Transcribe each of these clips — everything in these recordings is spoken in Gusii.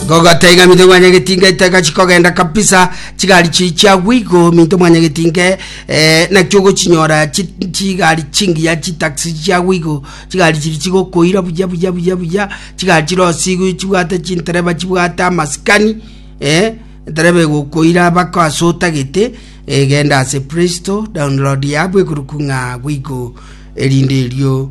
Gogota iga minto mwanyagetinga etagachi kogenda kabisa, chigari chiri chiagwa igo minto mwanyagetinga eh, nakio ogochinyora chi- chigari chingiya chitaxi chiagwa igo chigari chiri chigokoira buya buya buya buya chigari chirosigwe chibwate chintereba chibwate amasikani eh, entereba egokoira bako ase otagete eh, genda ase play store download yabo ekoruku ng'a agwo igo erinde erio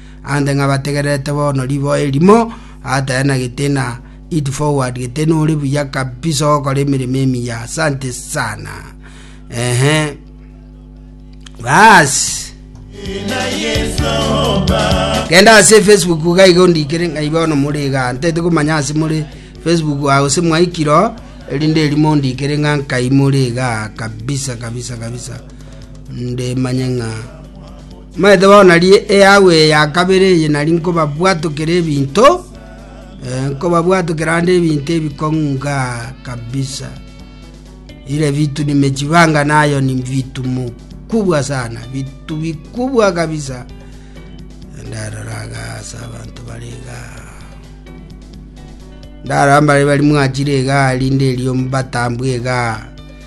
aande ng'a bategererete bono riboa erimo, atenagete na eat forward gete nore buya kabisa ogokora emeremo emiya asante sana ehe basi genda ase facebook gaiga ondikere ng'ai bono more iga ntete komanya ase more facebook ase mwaikiro erinde erimo ondikere ng'a nkai more iga kabisa kabisa kabisa nde manye ng'a Manyete bono nari eago eye ya kabere eye nari nkobabwatokera ebinto, nkobabwatokera naende ebinto ebikong'u inga kabisa, ire vitu nimejipanga nayo ni vitu mukubwa sana, vitu vikubwa kabisa. Ndarora iga ase abanto bare iga, ndarora mbare bari mwachire iga rinde erio mbatambwe iga.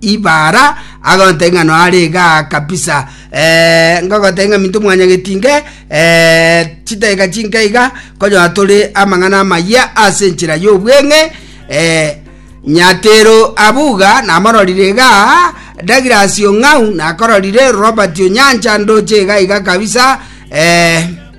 Ibara agoteba ng'a noare igaa kabisa, eh, ngogotebia ng'a minto mwanyageti inke, eh, chidageka chinke iga, konyora tore amang'ana amayia ase enchera y'obweng'e, eh, Nyatero abuga namororire igaa, Douglas Ong'au nakororire, Robert Onyancha ndoche iga iga kabisa, eh,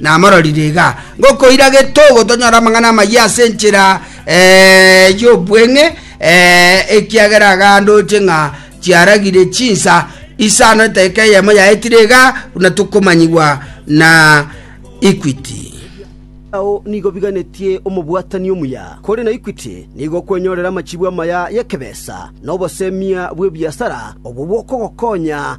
Namororire iga, ngokoira getogo tonyore amang'ana amayia ase enchera y'obweng'e, ekiagera agandoche ng'a chiaragire chinsa isano edaika eyemo yaetire iga buna tokomanyigwa na Equity. Ao nigo biganetie omobwatani omuya, kore na Equity nigo okwenyorera amachibu amaya y'ekebesa na obosemia bw'ebiasara obwo bwokogokonya